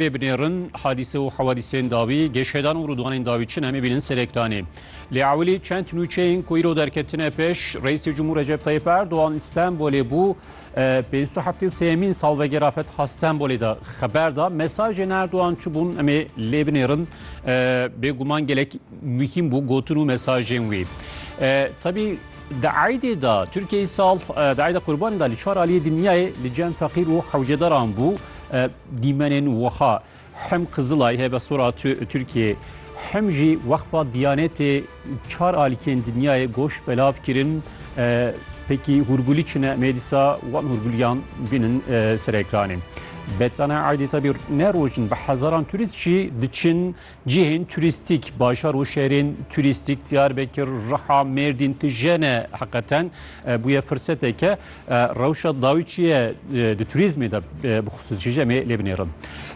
Pê binêrin hadîse û hewadîsên dawî, gêşedan û rûdwanên dawî çi ne em ê bînin serektanê. Lê ewilî çend nûçeyên ku îro derketine pêş, Reîsê Cumhur Recep Tayyip Erdogan li Stenbolê bû, pênc û heftê û sêyemîn salvegera Fetha Stenbolê de xeber da. Mesajên Erdogan çi bûn em ê lê binêrin. Bêguman gelek muhîm bû gotin û mesajên wî. Tebî Di eydê de Tirkiyeyê sal di eyda qurbanê de li çar aliyê dinyayê li cem feqîr û hewcedaran bû. Dîmenên wiha hem Qizilay hebe sora Tirkiyê hem jî Weqfa Diyanetê çar alîkên dinyayê goş belav kirin. Pekî hûrgulî çine mê dîsa wan hûrguliyan bînin ser ekranê. Betana Aydê tabî ne rojin bi hezaran turîst jî diçin Cihên turîstîk, bajar û şerên turîstîk Diyarbekir, Riha, Mêrdîn, Tijene heqeten bûye firseteke rewşa dawîçiye di turîzmê de bi xisûsî jî em ê lê binêrin.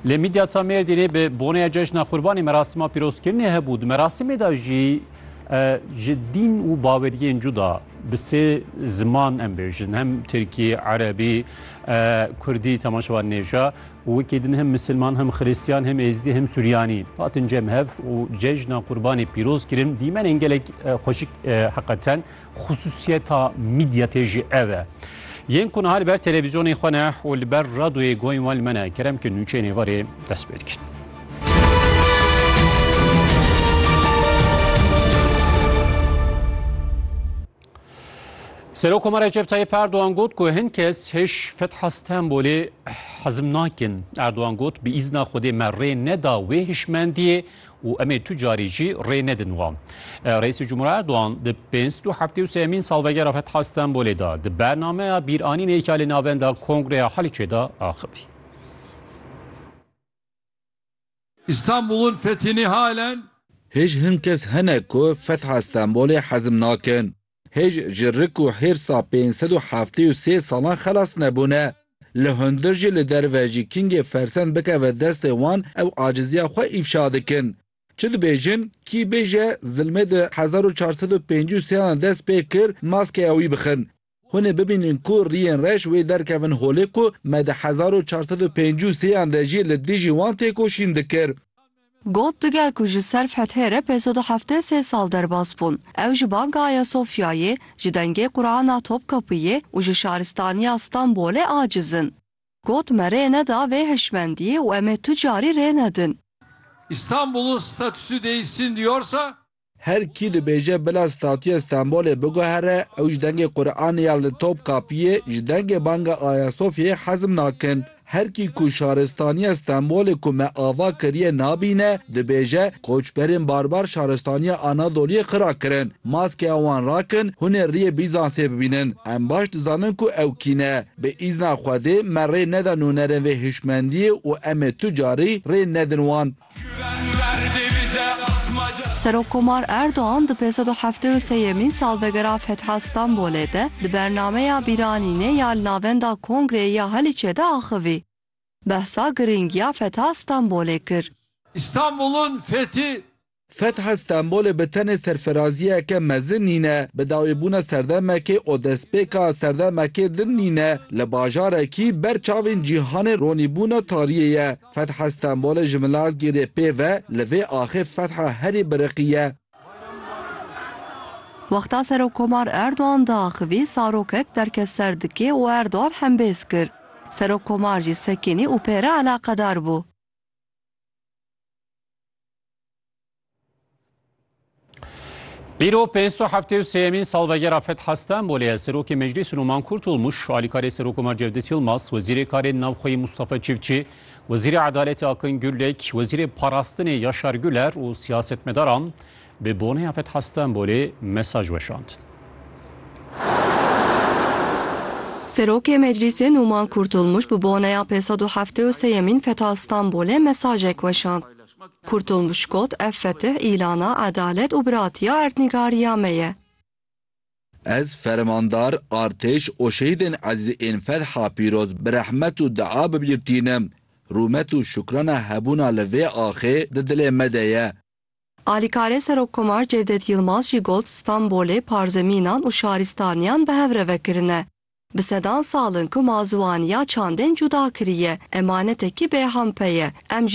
Lê Mîdyata Mêrdînê bi boneya Cejna Qurbanê merasîma pîrozkirinê hebû. Di merasîmê de jî ji dîn û baweriyên cuda, Bi sê ziman em bêjin hem Tirkî, Erebî, Kurdî temaşe wan nêja û wekî din hem Misilman hem Xirîstiyan hem Êzdî hem Suryanî hatin cem hev û cejna Qurbanê pîroz kirin dîmenên gelek xweşik heqeten xisûsiyeta mîdya tê jî ev e. Yên ku niha li ber televîzyonê xwe ne û li ber radoyê goyên wan li me ne kerem ke nûçeyên êvarê dest pê dikin. Serok Komar Recep Tayyip Erdoğan got ku hin kes hiş Fetha Stenbolê hezm nakin. Erdoğan got bi îzna Xwedê me rê neda wê hişmendiyê û em ê tu carî jî rê nedin wan. Reîsê Cumhurî Erdoğan di pênc û heftê û sêyemîn salvegera Fetha Stenbolê de di bernameya bîranînê ya li navenda Kongreya Haliçê de axivî. İstanbul'un fethini halen Hêj hin kes hene ku fetha Stenbolê hezm nakin. Hêj ji rik û hêrsa pênc sed û heftê û sê salan xelas nebûne. Li hundir jî li derve jî kingê fersend bikeve destê wan ew aciziya xwe îfşa dikin. Çi dibêjin, kî bêje zilmê di hezar û çar sed û pêncî û sêyan de dest pê kir maskeya wî bixin. Hûn ê bibînin ku riyên reş wê derkevin holê ku me di hezar û çar sed û pêncî û sê yan de jî li dijî wan têkoşîn dikir. Got, Di gel ku ji ser fethê re pênc sed û heftê û sê sal derbas bûn. Ew ji Banka Ayasofyayê, ji Dengê Qurana Topkapiyê û ji Şaristaniya Stenbolê aciz in. Got, Me rê neda vê hişmendiyê û em ê tu carî rê nedin. İstanbul'un statüsü değişsin diyorsa Her kî dibêje bila statuya Stenbolê biguhere ew ji dengê Quranê ya li Topkapiyê, ji dengê banga Ayasofyayê hezm nakin. Her kî ku şaristaniya Stenbolê ku me ava kiriye nabîne, dibêje, Koçberên barbar şaristaniya Anadoliyê xira kirin. Maskeya wan rakin, hûn ê riyê Bîzansê bibînin. Em baş dizanin ku ew kî ne. Bi îzna Xwedê me rê neda nûnerên vê hişmendiyê û em ê tu carî rê nedin wan. Serokkomar Erdogan di pênc sed û heftê û sê yemîn salvegera Fetha Stenbolê de di bernameya bîranînê ya li navenda Kongreyê ya Haliçê de axivî. Behsa girîngiya Fetha Stenbolê kir. Stenbol'un fethi. Fetha Stenbolê bi tenê serferaziyeke mezin nîne, bi dawî bûna serdemekê û destpêka serdemekê din nîne, li bajarekî ber çavên cîhanê ronîbûna tariyê ye. Fetha Stenbolê ji Milazgîrê pê ve li vê axê fetha herî biriqiye. Wexta Serokkomar Erdogan diaxivî Sarokek derket ser dikê û Erdogan hembêz kir. Serokkomar jî sekinî û pê re eleqedar bû. Îro pênc û heftê û sêyemîn salvegera Fetha Stenbolê ye. Serokê Meclîsê Numan Kurtulmuş, alîkarê Serokomar Cevdet Yilmaz, Wezîrê Karên Navxweyî Mustafa Çiftçî, Wezîrê Edaletê Akin Gulek, Wezîrê Parastinê Yaşar Güler û siyasetmedaran bi boneya Fetha Stenbolê mesaj weşand. Serokê Meclîsê Numan Kurtulmuş bi boneya pêsed û heftê û sêyemîn Fetha Stenbolê mesajek weşand. Kurtulmuş got, Ev fetih îlana edalet û biratiya erdnîgariya me ye. Ez fermandar, artêş û şehîdên ezîz ên Fetha Pîroz bi rehmet û dua bibîrtînim. Rûmet û şukrana hebûna li vê axê di dilê me de ye. Alîkarê Serokkomar Cevdet Yilmaz jî got, Stenbolê parzemînan û şarîstaniyan bi hev re vekirine. Bi sedan sal in ku ma ziwaniya çandên cuda kiriye, emanetekî bêhempe ye. Em jî.